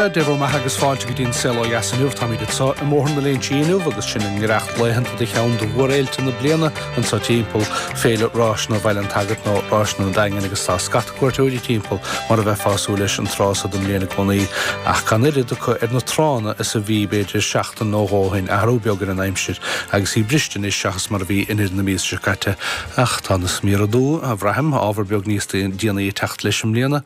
Sea, Dé bhur mbeatha agus fáilte go dtí an saol ó dheas inniu, táimid anseo i mBóthar na Léinte inniu agus sinn i ngiorracht laethanta de cheann de mhórfhéilte na bliana anseo timpeall, Féile Ráiseanna Bhaile an tSagairt nó Ráiseanna an Daingin agus tá scata cuairteoirí timpeall mar a bheifeá ag súil leis an tráth so den mbliain i gcónaí ach gan oiread acu ar na tránna is a bhí b'fhéidir seachtain nó dhó ó shin, athrú beag ar an aimsir agus í briste anois seachas mar a bhí i ndeireadh na míosa seo caite. Ach tá na sméara dubha, a bhraithim, ábhar beag níos déanaí ag teacht leis i mbliana.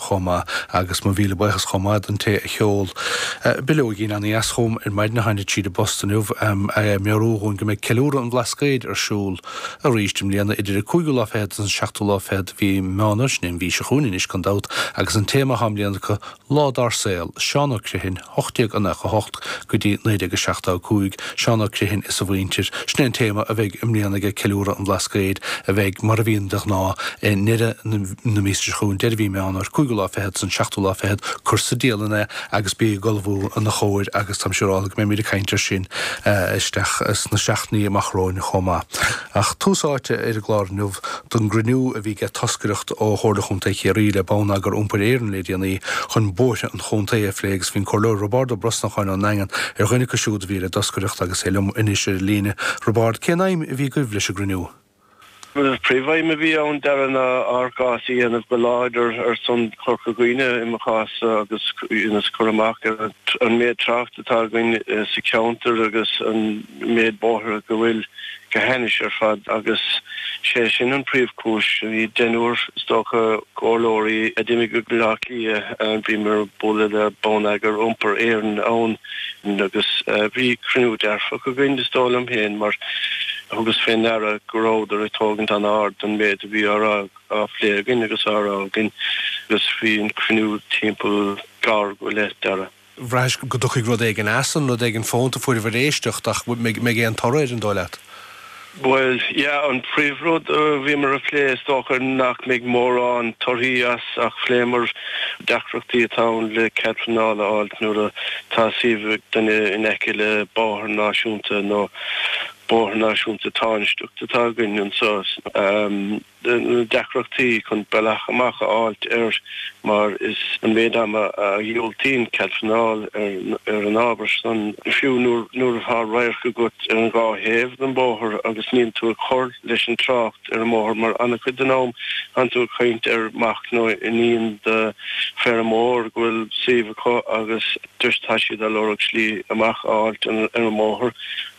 chomh maith. Agus mo mhíle buíochas chomh maith don té a sheol bileoigín ana-dheas chugam ar maidin a tháinig tríd an bpost inniu, ag meabhrú dhúinn go mbeidh Ceiliúradh an Bhlascaoid ar siúl arís i mbliana, idir an cúigiú lá fichead agus an seachtú lá fichead de mhí Meán Fhómhair, sin é an mhí seo chugainn anois gan dabht, agus an téama atá i mbliana acu, Lá dár saol, Seán Ó Criomthain, 1898 go dtí 1975, Seán Ó Criomthain is a mhuintir. Sin é an téama a bheidh i mbliana ag Ceiliúradh an Bhlascaoid, a bheidh, mar a bhíonn de ghnáth, i ndeireadh na míosa seo chugainn, deireadh mhí Meán Fhómhair, cúigiú lá fichead go dtí an seachtú lá fichead, cuir sa dialann é agus bí ag ullmhú ina chomhair agus táim siúráilte go mbeimid ag caint air sin isteach sna seachtainí amach romhainn chomh maith. Ach tús áite ar an gclár inniu. don gcruinniú a bhí aige toscaireacht ó Chomhairle Chontae Chiarraí le Bonneagar Iompair Éireann le déanaí chun bóithre an chontae a phlé agus bhí an Comhairleoir Roibeárd Ó Brosnacháin ón nDaingean ar dhuine acu siúd a bhí ar an dtoscaireacht agus tá sé liom anois ar an líne. Roibeárd, Cén aidhm a bhí agaibh leis an gcruinniú? Príomhaidhm a bhí ann Dara ná ár gcás a dhéanamh go láidir ar son Chorca Dhuibhne i mo chás agus ionas cur amach ar an méid trácht atá againn sa cheantar agus an méid bóithre go bhfuil go hainnis ar fad agus sé sin an príomhchúis. Bhí deichniúr, is dócha, comhairleoirí a d'imigh go Baile Átha Cliath. Bhíomar ag bualadh le bonneagar Iompair Éireann ann agus bhí cruinniú dearfach againn, is dóigh liom féin, mar thugas fé ndeara go rabhadar ag tógaint an-ard den méid a bhí á rá, á phlé againn agus á rá againn agus bhí an cruinniú timpeall uair go leith Dara. Braithis go dtiocfaidh rud éigin as san, rud éigin fónta fuair sibh éisteacht, ach mbeidh aon toradh air, an dóigh leat? Bhuel, yeah, an príomhrud a bhíomar a phlé, is dócha nach mbeidh mórán torthaí as ach phléamar deacrachtaí atá ann le cead pleanála a fháilt nuair atá suíomh ag duine in aice le bóthar náisiúnta nó bóthar náisiúnta tánaisteach atá againn anseo. na deacrachtaí chun bealach amach a fháilt air mar is an méid ama a dhiúltaíonn cead pleanáil ar an ábhar san, fiú nuair atá radharc agat ar an dhá thaobh den bhóthar agus níl tú ag cur leis an trácht ar an mbóthar mar an-chuid den am tá'n tú ag caint ar mac nó iníon de feirmeoir go bhfuil suíomh acu agus dóibh tá siad ag lorg slí amach a fháilt ar an mbóthar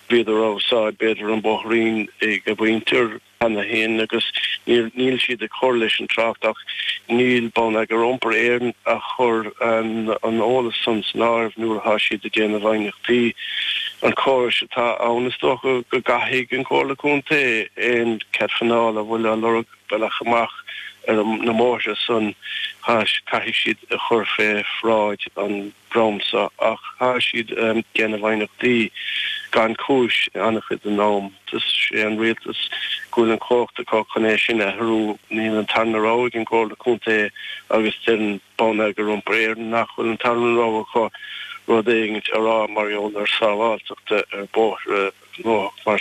bhíodar á usáid b'fhéidir an bóithrín ag a mhuintir. cheana féin agus níl siad ag cur leis an trácht ach níl Bonneagar Iompair Éireann ag cur an eolais san san áireamh nuair atá siad ag déanamh aighneachtaí. An córas atá ann is dócha go gcaithfidh an Comhairle Contae aon cead pleanála a bhfuil ag lorg bealach amach ar na mbóithre san caithfidh siad é a chur fé bhráid an dreamsa, ach tá siad ag déanamh aighneachtaí gan chúis an-chuid den am. Is é an rialtas go bhfuil an chumhacht acu chun é sin a athrú. Níl an tarna rogha ag an gComhairle Contae agus deireann Bonneagar Iompair Éireann nach bhfuil an tarna rogha acu rud éigin a rá mar gheall ar sábháilteacht ar bhóithre gnóthach mar